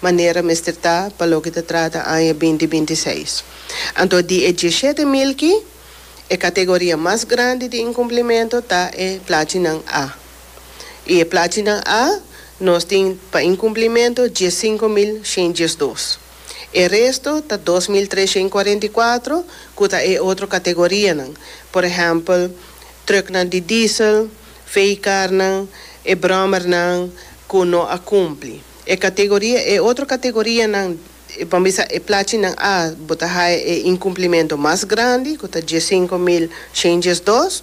manera mester ta pa loke ta trata aña binti binti seis. Anto di e diesshete milki, e kategoria mas grandi di inkumplimentu ta e plachinan A. I e plachinan A nos tin pa inkumplimentu diessinko mil shen diesdos. E resto ta dos mil tres shen kuarenta i kuatro ku ta e otro kategorianan, por ehèmpel, trùknan di diesel, vehikarnan, e bròmernan ku no a kumpli. E kategoria, E otro kategorianan, e por bisa e plachinan A, bo ta haya e inkumplimentu mas grandi, ku ta diesinko mil shenjes dos.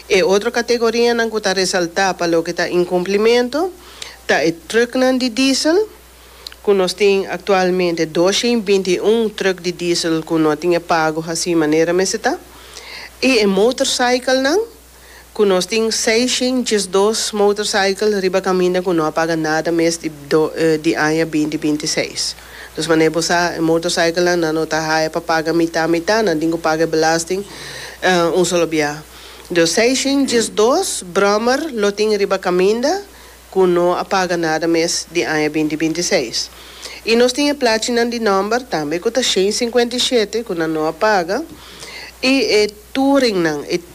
E otro kategorianan ku ta resaltá pa loke ta inkumplimentu, ta e trùknan di diesel, ku nos tin aktualmente dos shen binti i un trùk di diesel ku no tin e pago hasí manera mester ta, i e motorcyclenan. ku nos tin seishen diesdos motorcycle riba kaminda ku no a paga nada mes di di aña binti binti i seis. Dus manera bo sa e motorcyclenan nan no ta haya pa paga mitá mitá, nan tin ku paga e belasting un solo biaha. Dus seishen diesdos brommer lo tin riba kaminda ku no a paga nada mes di aña binti binti i seis. I nos tin e plachinan di nòmber tambe ku ta shen sinkuenta i shete ku nan no a paga i e touringnan, e.